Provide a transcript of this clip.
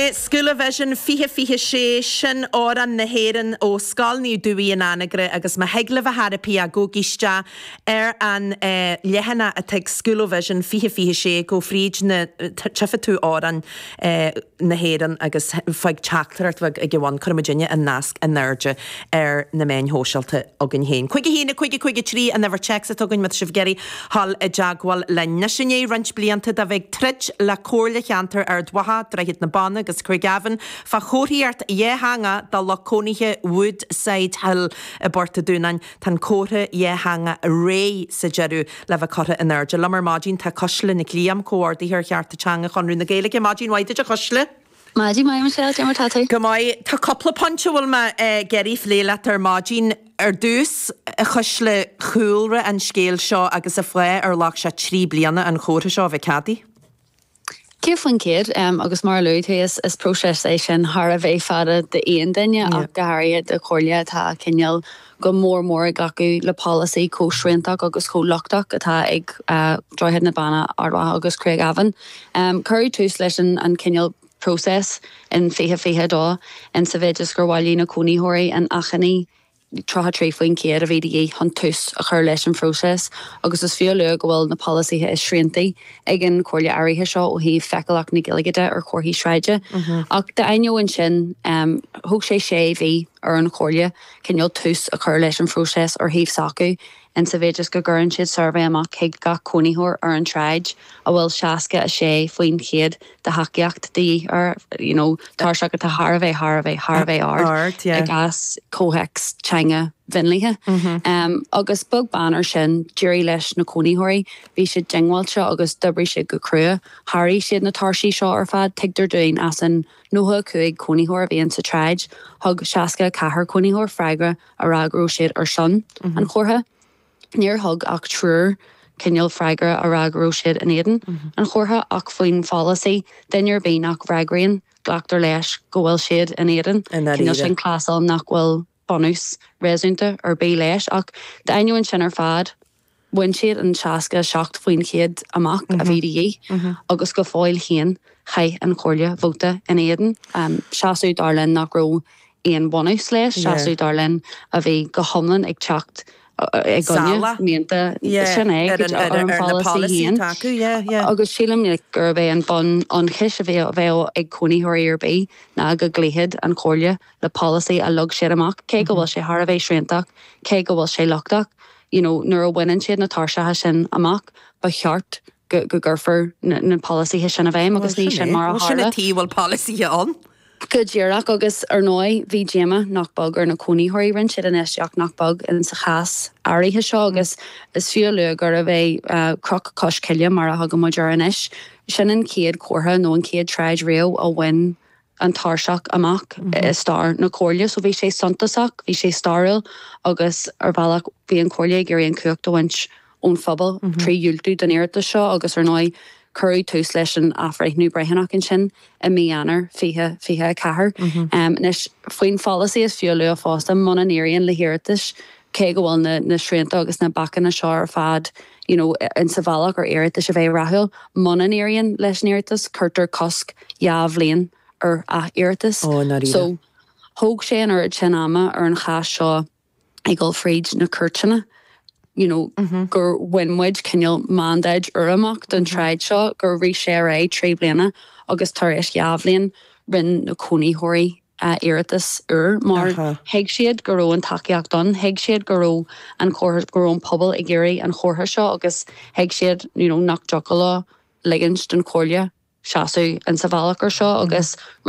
Scoilavision 2026, Sin Amhrán na hÉireann ó Scoil Naomh Dubhthaigh in Anagaire agus má thig libh ar chor ar bith gabháil isteach ar an leathanach atá ag Scoilavision 2026 gabh fríd ná tífidh tú amhrán na hÉireann agus fág teachtaireacht bheag ag a bhun cuirfimidinne an nasc in airde ar na meáin shóisialta againn féin. 51 50 53 an uimhir téacs atá againn má tá sibh ag iarraidh Dul i dteagmháil linn. Anois i ndiaidh roinnt blianta de bheith ag troid le Comhairle Cheantar Ard Mhacha, Droichead na Banna agus Craigavon fá chomharthaíocht dhátheangach do lucht cónaithe Woodside Hill i bPort a' Dúnáin, tá an comhartha dátheangach réidh sa deireadh le bheith curtha in airde. Liom ar maidin tá Cuisle Nic Liam, Comhordaitheoir Cearta Teanga Chonradh na Gaeilge. Maidin mhaith duit a Chuisle! Maidin Maidin Michelle, cad é mar atá tú? Go maith. Tá cúpla pointe a bhfuil mé ag iarraidh a phlé leat ar maidin. Ar dtús, a Chuisle, cúlra an scéil seo agus cén fáth ar ghlac sé trí bliana an chomhartha seo a bheith ceadaithe. Céad faoin chéad, agus mar a luaigh tú, is próiseas é sin thar a bheith fada d'aon duine ach go háirithe do chomhairle atá cineál go mór mór i dtaca le polasaí chomh sriantach agus chomh lochtach atá ag Droichead na Banna, Ard Mhacha agus Craigavon. Cuireadh tús leis an chineál próiseas in 2022 in sa mhéid is gur bhailigh na cónaítheoirí an achainí, 33% a bhí de dhíth chun tús a chur leis an phróiseas, agus is fiú a lua go bhfuil na polasaithe is sriantaí ag an Chomhairle áirithe seo ó thaobh feiceálacht na Gaeilge de ar chomharthaí sráide. Ach d'ainneoin sin, thóg sé sé mhí ar an Chomhairle, cineál tús a chur leis an phróiseas ar thaobh s'acu, insa mhéid is go gcuireann siad suirbhé amach chuig gach cónaitheoir ar an tsráid, a bhfuil 66% de thacaíocht de dhíth air, you know tairseach atá thar a bheith, thar a bheith, thar a bheith ard, Ard, yeah. i gcás comhthéacs teanga mhionlaithe. Em, agus beag beann ar sin, d'éirigh leis na cónaitheoirí, bhí siad diongbháilte agus d'oibrigh siad go crua, sháraigh siad na tairsí seo ar fad, tuigtear dúinn as an. 95 cónaitheoir a bhí insa tsráid, thug 64 cónaitheoir freagra a rá go raibh siad ar son an chomhartha, níor thug ach triúr cineál freagra a rá go raibh siad in éadan an chomhartha, ach faoin pholasaí, duine ar bith nach bhfreagraíonn, glactar leis go bhfuil siad in éadan, cineál sin clásal nach bhfuil bunús réasúnta ar bith leis, ach d'ainneoin sin ar fad, bhain siad an 67 faoin chéad amach a bhí de dhíth agus go fóill féin, chaith an Chomhairle vóta in éadan. Seasamh, dar linn, nach raibh aon bhunús leis, seasamh, dar linn, a bhí go hiomlán ag teacht ag ionadh, mianta, sin é, ar an pholasaí féin. Agus sílim gurb é an bunionchas a bheadh ag cónaitheoirí ar bith ná go gcloífeadh an Chomhairle le polasaí a leag siad amach, cé go bhfuil sé thar a bheith sriantach, cé go bhfuil sé lochtach. You know, nuair a bhaineann siad na tairseacha sin amach, ba cheart go gcuirfear na polasaithe sin i bhfeidhm agus ní sin mar a tharla. Bhuel, sin a, bhuel, sin a tí, bhfuil polasaithe ann. Go díreach, agus ar ndóigh bhí díoma nach beag ar na cónaítheoirí, rinne siad infheistíocht nach beag insa chás áirithe seo agus is fiú a lua gurbh é Cnoc Cois Coille, mar a thugann muid air anois, sin an chéad chomhartha nó an chéad tsráid riamh a bhain an tairseach amach i stair na Comhairle. So bhí sé suntasach, bhí sé stairiúil agus ar bhealach bhí an Chomhairle ag iarraidh an chumhacht a bhaint ón phobal trí dhiúltú don iarratas seo agus ar ndóigh cuireadh tús leis an athbhreithniú breithiúnach ansin i mí Eanáir 2024. Anois, faoin pholasaí is fiú a lua fosta, muna n-éiríonn le hiarratais, cé go bhfuil na srianta agus na bacanna seo ar fad you know insa bhealach ar iarratais a bheith rathúil, muna n-éiríonn leis an iarratas cuirtear cosc dhá bhliain ar ath-iarratas. So, thóg sé an oiread sin ama ar an chás seo, ag dul fríd na cúirteanna you know gur bhain muid cineál mandáid úr amach don tsráid seo, gur rith sé ar aghaidh trí bliana agus tar éis dhá bhliain rinne na cónaitheoirí iarratas úr mar thuig siad go raibh an tacaíocht ann, thuig siad go raibh an chomhartha, go raibh an pobal ag iarraidh an chomhartha seo agus thuig siad you know nach dtiocfadh leo ligint don Chomhairle seasamh insa bhealach ar seo agus rinne